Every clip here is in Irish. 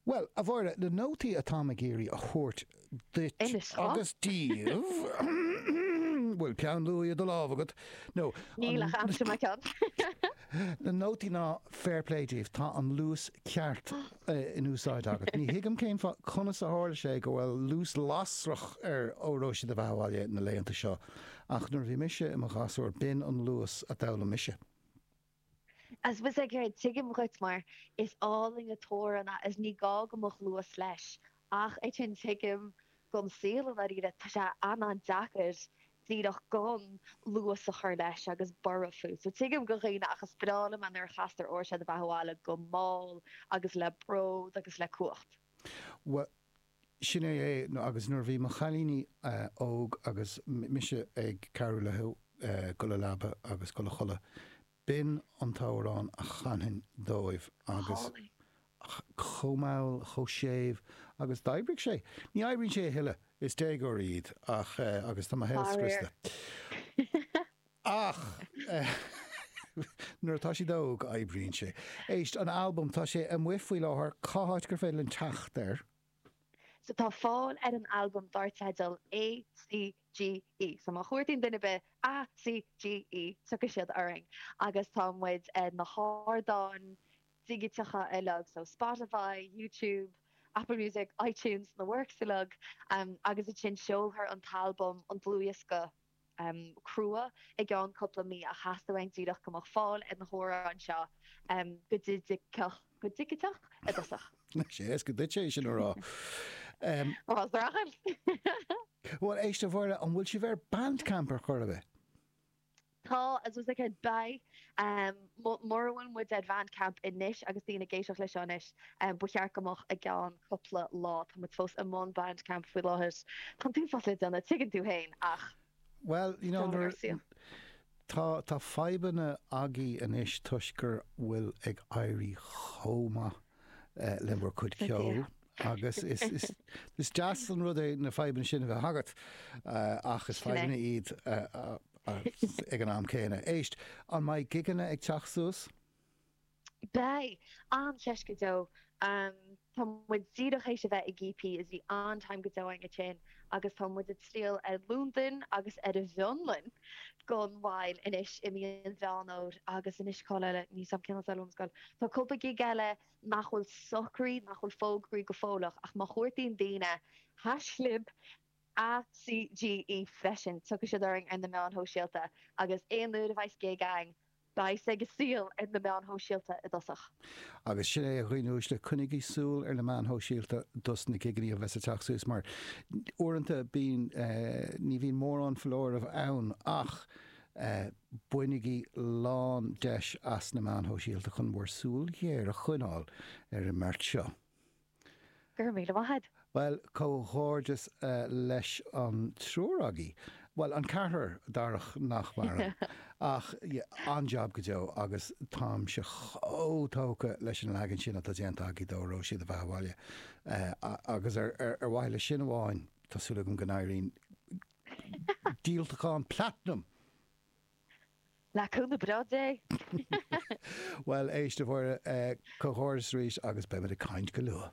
Bhuel, a Mháire, na nótaí atáim ag iarraidh a thabhairt duit agus daoibh, an bhfuil peann luaidhe i do lámh agat nó Níl ach aimseoidh mé ceann. Na nótaí ná fair play daoibh, tá an luas ceart eh, in úsáid agat. Ní thuigim cén fáth conas a tharla sé go bhfuil luas lasrach ar Óró Sé do Bheatha 'Bhaile na laethanta seo, ach nuair a bhí mise i mo ghasúr b'in an luas a d'fhoghlaim mise. I suppose a chara tuigim duit mar is álainn an t-amhrán é agus ní gá go mbeadh luas leis ach ansin tuigim don saol i ndáiríre tá sé an-deacair díreach gan luas a chur leis agus borradh fút so Tuigim do dhaoine ach is breá liom é nuair a chastar Óró Sé do Bheatha 'Bhaile go mall agus le bród agus le cumhacht. Sin é é agus nuair a bhí mo chailíní óg agus mise ag cabhrú leo dul sa leaba agus dul a chodladh, b'in an t-amhrán a chanfainn dóibh agus chomh mall is chomh séimh agus d'oibrigh sé. Ní oibríonn sé a thuilleadh, is déagóirí iad ach, agus tá mo shaol scriosta. Ach nuair atá siad óg, oibríonn sé. Éist, an albam, tá sé amuigh faoi láthair, cá háit gur féidir linn teacht air? So tá fáil ar an albam dar teideal ACGE, so má chuartaíonn duine ar bith ACGE, tiocfaidh siad orainn agus tá muid ar na hardáin dhigiteacha uilig, so Spotify, YouTube, Apple Music, iTunes, na works uilig, agus ansin seolfar an t-albam, an dlúthdhiosca, crua i gceann cúpla mí ach theastaigh uainn díreach go mbeadh fáil ar na hamhráin seo go digiteach go digiteach i dtosach. Bhuel éist dála an scéil an bhfuil sibh ar Bandcamp ar chor ar bith? Tá I suppose like beidh um, Mura bhfuil muid ar Bhandcamp anois, agus daoine ag éisteacht leis seo anois, ba cheart go mbeadh i gceann cupla lá. Tá muid fós i mbun Bandcamp faoi láthair. Tá an t-uafás le déanamh, tuigeann tú féin, ach sin é an saol. Tá fadhbanna agaibh anois toisc go bhfuil ag éirí chomh maith. le bhur cuid ceoil agus is deas an rud é na fadhbanna sin a bheith agat ach is fadhbanna iad ag an am céanna. Éist, an mbeidh gigeanna ag teacht suas? Beidh! Cinnte dó. Tá muid díreach tar éis a bheith i gcp is bhí an-time go deo againn ansin. agus tá muid ag triall ar Londain agus ar an bhFionlainn gan mhoill anois i mí Mheán Fómhair agus anois cá háit eile, níl a fhios agam cén saol ón scoil. Tá cúpla gig eile nach bhfuil socraithe, nach bhfuil fógraithe go fóilleach ach má chuartaíonn daoine haischlib ACGE freisin, tiocfaidh siad orainn ar na meáin shóisialta agus aon uair a bheidh gig ann Beidh sé suas ar na meáin shóisialta i dtosach. Agus sin é a dhaoine uaisle, coinnigí súil ar na meáin shóisialta dos na gigeannaí a bheas ag teacht suas mar uaireanta bíonn, ní bhíonn mórán foláirimh ann ach bainigí lán deis as na meáin shóisialta chun bhur súil ghéar a choinneáil ar an mbeart seo. Go raibh míle maith a'd. Bhuel, comhghairdeas leis an triúr agaí, bhuel, an ceathrar, Darach nach maireann, ach an-jab go deo agus táimse chomh tógtha leis an leagan sin atá déanta agaí de, Róisín a bheith abhaile agus ar mhaithe le sin amháin, tá súil agam go n-éiríonn díoltachán platanam! Le cúnamh breá Dé! Bhuel, éist, a Mháire, comhghairdeas arís agus beimid ag caint go luath.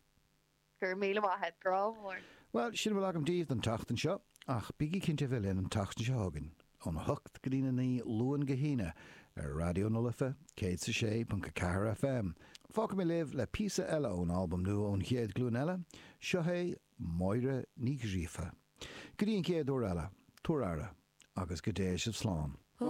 Go raibh míle maith a't, grá mhór! Bhuel, sin a bhfuil agam daoibh don tseachtain seo, ach bígí cinnte a bheith linn an tseachtain seo chugainn, óna hocht go dtí a naoi, Luan go hAoine, ar Raidió na Life, céad 's a sé ponc a ceathair FM. Fágfaidh mé libh le píosa eile ón albam nua ón chéad ghlúin eile, seo é Máire Ní Ghríofa. Go dtí an chéad uair eile, tabhair aire agus go dté sibh slán.